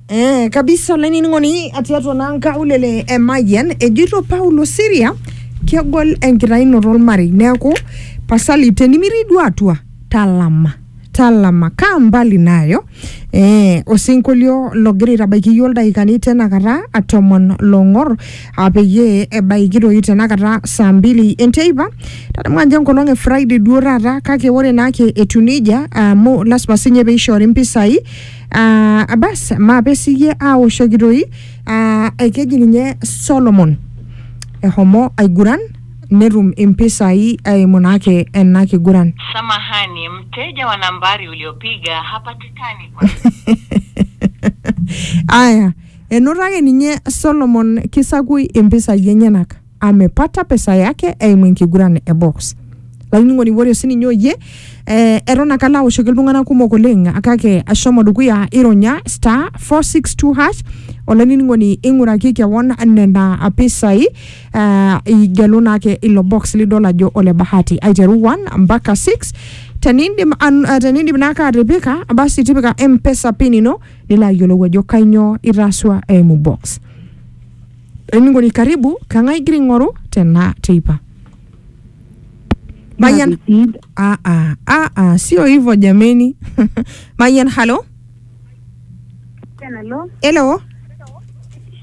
Eh, kabisa olainining'oni atii atua naa nkaulele e Mayian ejoito Paulo Siria kegol enkitayunoto olmarei neeku pasali tenimirii duo atua talama talama kaa mbali nayo eh, osinkolio logira aitabaiki iyiook ildaikani tenakata tomon long'or aa peyie ebaiki doi tenakata saa mbili enteipa tadamu ajo enkolong e friday duo taata kake ore naake etiu nejia amu lasima sinye peishoori mpisai aa bas maape siyie aoshoki toi aa ekeji ninye solomon ehomo aiguran netum impisai eimu naake ena kiguran Samahani, mteja wa nambari uliopiga hapatikani kwa aya Enoto ake ninye Solomon kisakui impisai enyenak. Amepata pesa yake eimu enkiguran e box. Lainining'oni ore sininye oyie eh, eton ake alo aoshoki iltung'anak kumok oleng kake ashomo dukuya ironya star 462 hash olainining'oni ing'uraki kewon nena pisai eh, igelu naake ilo box lidol ajo ole bahati aiteru 1 mpaka 6 tenindim, an- eh, tenindim naake atipika basi tipika mpesa pin ino nilo ayiolou ajo kainyoo itaasua eimu box. Olainining'oni karibu, kang'ae igira aing'oru tena teipa? Mayian, ah, ah, ah, ah, sio hivyo jameni. Mayian, halo? Hello. Hello.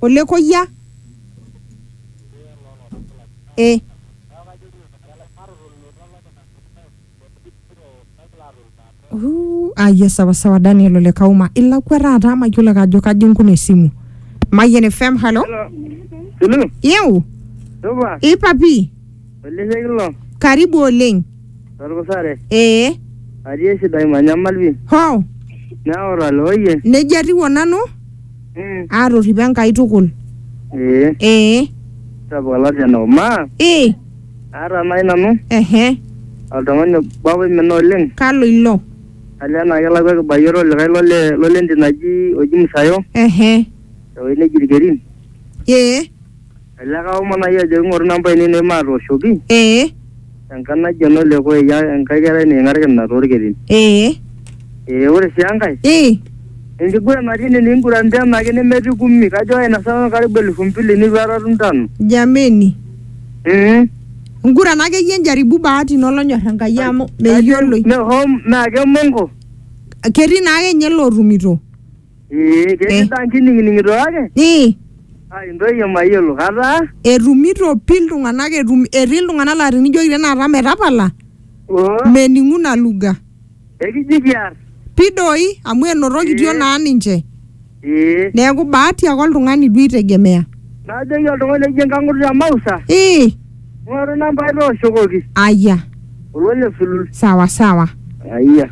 olekoyia eh. Uh, ayia sawasawa daniel ole kauma ilakua taata amu mayiolo ake ajo kaji nkuna esimu mayian fm halo Hello. iu Supa. ipapi Olemeki ilo. Karibu oleng. Torkusare. Ee. Atii esidai manyamal pi. Hoo. Neoro ale oye. Neija atiu onanu. Mm. Aatorripo Enkai tukul. Ee. Ee. Sapuk olasian obo. Maa. Ee. Aata nai nanu. Ehe. Oltung'ani obo apa oimina oleng. Kalo ilo? Alio enaa kelakwa ekibayioro olikae lole lole ntim naji oji Musayo. Ehe. Tewoi neji Irkerin. Ee. Elelek aomonai ajo ing'oru namba ainei nemaatooshoki ee tenkarna naji enole koyia enkae kerai niking'arki ina toorkerin. ee Ee ore sii enkae ee enkiguran natii ine nikinguranta enaake nemetii kumi kajo kainasa nanu karibu elfu mbili neitu aikata atum tano. jameni Mm. ngurana akeyie njaribu bahati ino olonyor enkai amu meyioloi Me home naa kemongo. ketii naake ninye lootumito Ee, ketii taa nkinining'ito kake Ii, aa intoyie mayiolo kataa. etumito pi iltung'anak etum, etii iltung'anak laa tenijoki tenakata metapala, Oo, mening'u ina lugha. ekiji kiar. Pi doi, amu enotokitia naa ninche. Ee, Neeku bahati ake oltung'ani duo itegemea. najoki oltung'ani oji enkang'ut te Mausa, Ii, ng'oru nambai tooshokoki. aya, Olole sulul. sawa sawa. Ayia.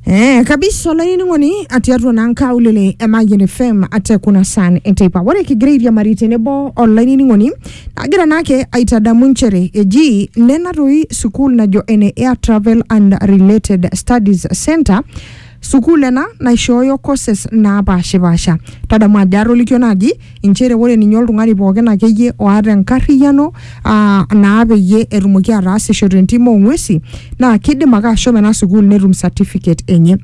Eh, kabisa olainining'oni atii atua naa nkaulele e Mayian FM ate kuna san enteipa ore kigira airiamari tenebo olainining'oni agira naake aitadamu nchere eji nena toi sukuul najo ene Air Travel and Related Studies Center sukuul ena naishooyo courses naapashipasha tadamu ajo atolikio naaji inchere ore ninye oltung'ani pookin akeyie oata enkarriyiano aa naa peyie etumoki ataasisho tentim ong'uesi naa kidim ake ashomo ena sukuul netum certificate enye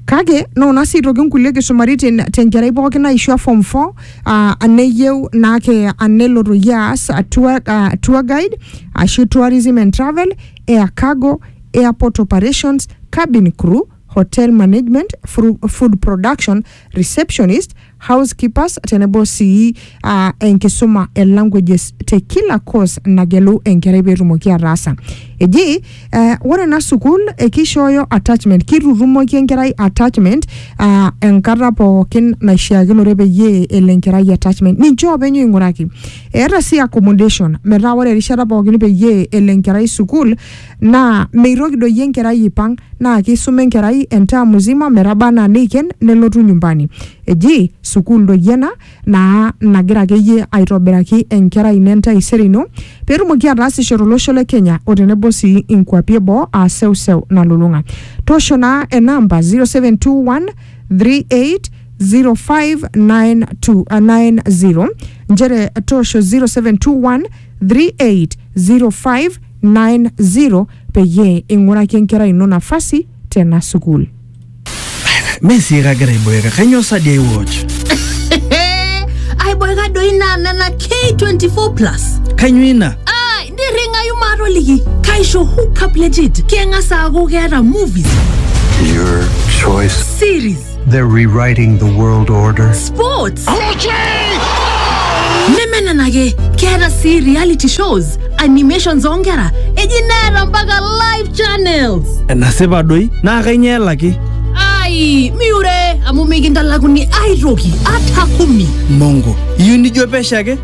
kake noona sii aitoki nkulie kisumaritin tenkerai pookin naishua form 4 aa aneyieu naake anelo toyie aas a tour, a tour guide ashu tourism and travel air cargo airport operations cabin crew hotel management, fru- food production, receptionist, housekeepers tenebo sii ah, enkisuma e languages te kila course nagelu enkerai peetumoki ataasa. Eji eh, ore ena sukuul eh, kishooyo attachment, kitutumoki enkerai attachment ah, enkata pookin naishiakinore peyie elo enkerai attachment. Ninche oopeny oing'uraki. Eeta sii accommodation metaa ore erishata pookin peyie elo enkerai sukuul Naa meitoki doi enkerai aipang naa keisuma enkerai entaa muzima metaba anaa neiken nelotu nyumbani. Eji sukuul doi ena naa nagira akeyie aitobiraki enkerai ino entaisere ino pee etumoki ataasisho tolosho le Kenya o tenebo sii inkuapi e boo aa seuseu nalulung'a. Toosho naa ena amba 0721380592 nchere toosho 07213805 90 peyie ing'uraki enkerai ino nafasi tena sukuul. Mee sii kagira aiboeka, kainyoo sa dii aiwatch? aiboeka doi naa nena K24 plus Kainyoo ina? ai nirring'ayu maatoliki kaisho hookup legit keng'as aaku keeta movies Your choice. series They're rewriting the world order. Sports! nemenenake keeta sii reality shows animations oonkera eji neeta mpaka live channels enasipa doi naa kainyoo elaki ai miure amu mikintalakuni aitoki ata kumi mongo iyieu nijo pesho ake